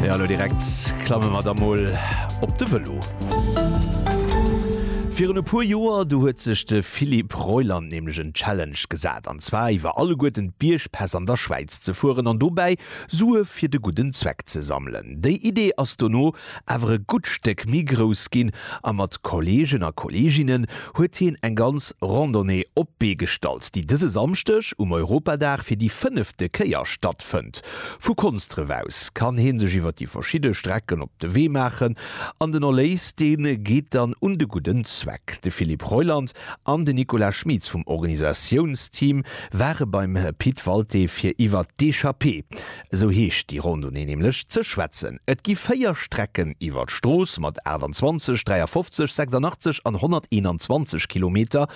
Ja, lo direkt klamme mer da mol op de Vëlo. Virun e puer Joer, du huet sech de Philippe Reuland nämlech en Challenge gesat, an zwar iwwer alleguerten d'Biergpäss an der Schwäiz ze fueren an dobäi Sue fir de gudden Zweck ze sammelen. Déi Idee ass dono awer e gutt Stéck méi grouss ginn a mat Kolleegen a Kolleeginnen huet hien eng ganz Randonnée op d'Bee gestallt, déi dëse Samschdeg um Europadag fir déi fënnefte Kéier stattfënnt. Vu Konsdref aus kann hee sech iwwer déi verschidde Strecken op de Wee maachen an den Erléis, dee geet dann un de gudden Zweck. De Philippe Reuland an den Nicolas Schmitz vum Organisatiounsteam ware beim Pit Walté fir iwwer d'Echappée esou heescht déi Rondonnée nämlech, ze schwätzen. Et gi véier Strecken iwwer d'Strooss mat 28, 53, 86 an 121 Kilometer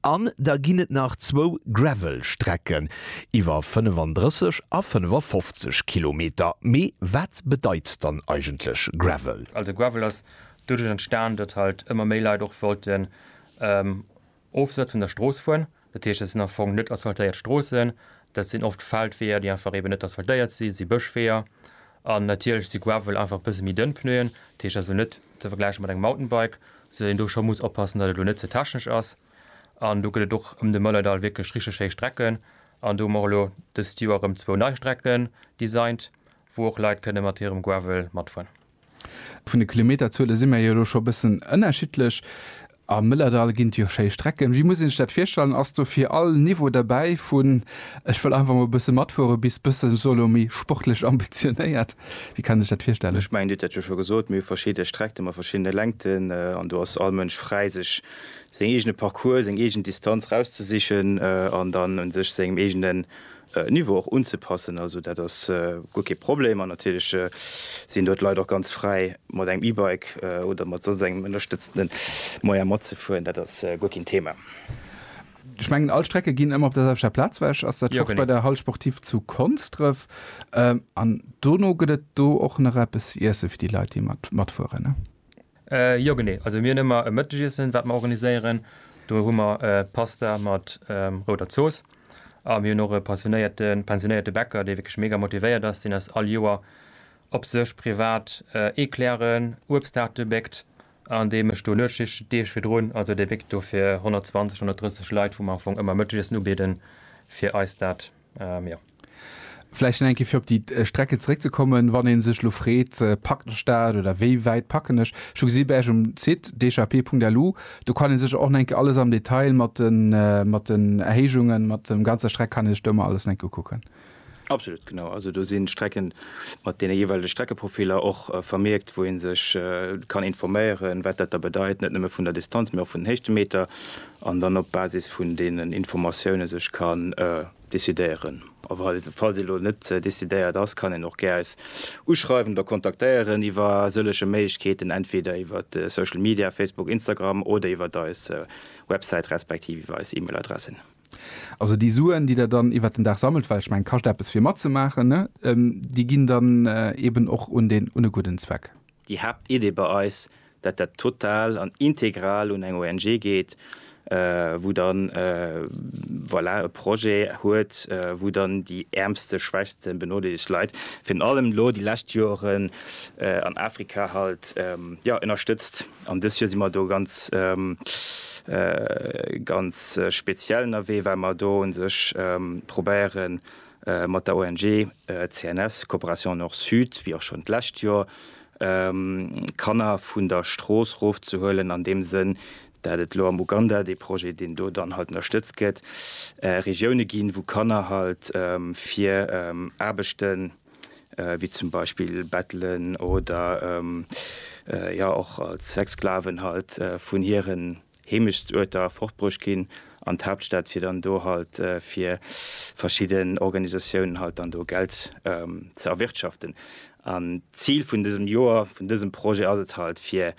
an da ginn et nach zwou Gravel-Strecken iwwer 35 a 55 Kilometer. Mee wat bedeit dann eigentlech Gravel? Also Gravel ass doduerch entstan, datt halt ëmmer méi Leit och wollten Ofsëtz vun der Strooss fueren, dat heescht dat sinn am Fong net asphaltéiert Stroossen, dat sinn oft Feldweeër, déi einfach eeben net asphaltéiert sinn, dat si Bëschweeër an natierlech si Gravel einfach e bësse méi dënn Pneuen, dat heescht also net ze vergläiche mat engem Mountainbike, sou datt een do scho muss oppassen, datt et elo net ze technesch ass. An do gëtt et och ëm de Mëllerdall wierklech richteg schéi Strecken an do hunn mer och elo dëst Joer erëm zwou nei Strecken designt, wou och Leit kënne mat hirem Gravel matfueren. Vun de Kilometerzuele si mir jo elo scho e bëssen ënnerschiddlech. Am Mëllerdall ginn et jo schéi Strecken. Wéi muss ee sech dat virstellen? Ass do fir all Niveau derbäi, vun ech wëll einfach mol e bësse matfuere bis bëssen sou elo méi sportlech ambitionéiert? Wéi kann ee sech dat virstellen? Ech mengen, Dir hutt dat jo scho gesot, mir hu verschidde Streckte mat verschiddene Längten an do ass all Mënsch fräi, sech seng eegene Parcourse, seng eegen Distanz rauszesichen an dann u sech sengem eegenen Niveau och unzepassen. Also dat ass guer kee Problem an natierlech sinn do d'Leit och ganz fräi mat engem E-Bike oder mat soss engem ënnerstëtzende Moyen matzefueren. Dat ass guer keen Thema. Ech mengen all Strecke ginn ëmmer op der selwechter Plaz wech. Ass dat och bei der Halle Sportive zu Konsdrëf? An dono gëtt et do och nach eppes ze iessen fir déi Leit déi matfueren? Jo genee, also mir hunn ëmmer e Mëttegiessen, wat mer organiséieren. Do hu mer Pasta mat rouder Zooss. A mir hunn och e passionéierte pensionéierte Bäcker, dee wierklech mega motivéiert ass. Deen ass all Joer op sech privat Eclairen, Uebsttaarte béckt an dee mécht do Nuetsschicht den Deeg virdrun. Also dee béckt do fir 120, 130 Leit, wou mer am Fong ëmmer Mëttegiessen ubieden, fir eis dat Ähm, ja. Vläicht eng fir op déi äh, Strecke zréckzekommen, wann een sech lo freet, äh, packt ech dat oder wéi wäit packen ech? Ech hu gesi bei Äch um Site dchp.lu, do kann een sech och enke alles am Detail mat den, äh, mat den Erhéijungen, mat dem ganzer Streck kann een sech do emmer alles enke ukucken. Absolut genau. Also do sinn Strecken mat deene jeeweilege Streckeprofiler och äh, vermierkt, wou een sech äh, kann informéieren, wat dat da bedeit, net nëmme vun der Distanz, mee och vun den Héichtemeter. an dann op Basis vun deenen Informatioune sech kann decidéieren. A falls ee elo net decidéiert ass, kann een och gär eis uschreiwen oder kontaktéieren iwwer sëllege Méiglechkeeten, entweder iwwer Social Media, Facebook, Instagram oder iwwer eis Websäit respektiv iwwer eis E-Mail Adressen. Also déi Suen, déi der dann iwwer den Dag sammelt, well ech mengen, kascht eppes fir matzemaachen, ne? Déi ginn dann eeben och un e gudden Zweck. Déi Haaptidee bei eis, dat dat total an integral un eng ONG geet, wou dann, voilà, e Projet huet, wou dann déi äermste, schwächste, benodeelegte Leit, virun allem elo déi lescht Joren an Afrika halt, jo, ënnerstëtzt. An dës Joer si mer do ganz, ganz speziell ënnerwee, well mer do u sech probéieren, mat der ONG CNS, Coopération Nord-Sud, wéi och schonn d'lescht Joer, Kanner vun der Strooss rofzehuelen, an deem Sënn, dat et elo am Uganda, dee Projet, deen do dann halt ënnerstëtzt gëtt, Regioune ginn, wou Kanner halt fir Aarbechten, wéi zum Beispill Bettelen oder jo och als Sexsklaven halt, vun hiren. Heemechtsduerter fortbruecht ginn an d'Haaptstad fir dann do halt fir verschidden Organisatiounen halt dann do Geld ze erwirtschaften. An d'Zil vun dësem Joer, vun dësem Projet ass et halt fir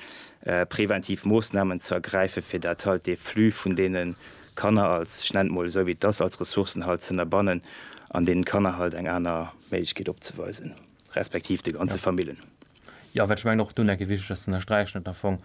preventiv Moossnamen ze ergräifen, fir dat halt dee Flux vun deene Kanner als, ich nenn et mol esou wéi et ass, als Ressourcen halt z'ënnerbannen an deenen Kanner halt eng aner Méiglechkeet opzeweisen. Respektiv de ganze Famillen. Jo, well ech mengen och do nach e wichteg ass ze ënnersträichen, datt am Fong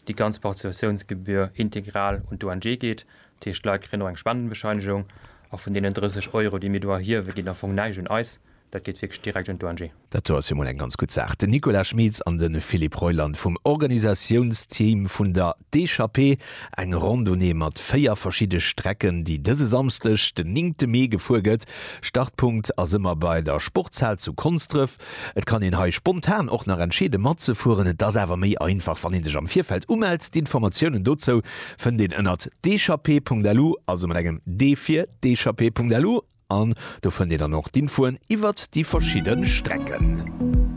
déi ganz Participatiounsgebühr integral un d'ONG geet. Dat heescht, d'Leit kréien och eng Spendenbescheinigung a vun deenen 30 Euro, déi mir do erhiewen, geet am Fong näischt un eis. Dat geet wierklech direkt un d'ONG. Dat do ass jo mol eng ganz gutt Saach. Den Nicolas Schmitz an de Philippe Reuland vum Organisatiounsteam vun der D'Echappée, eng Randonnée mat véier verschidde Strecken, déi dëse Samschdeg, den néngte Mee, gefuer gëtt. Startpunkt ass ëmmer bei der Sportshal zu Konsdref. Et kann een hei spontan och nach entscheede matzefueren. Et ass awer méi einfach, wann ee sech am Virfeld umellt. D'Informatiounen dozou fënnt een ënnert d'echappée.lu, also mat engem d fir d'echappée.lu, an do fënnt een dann och d'Infoen iwwert déi verschidde Strecken.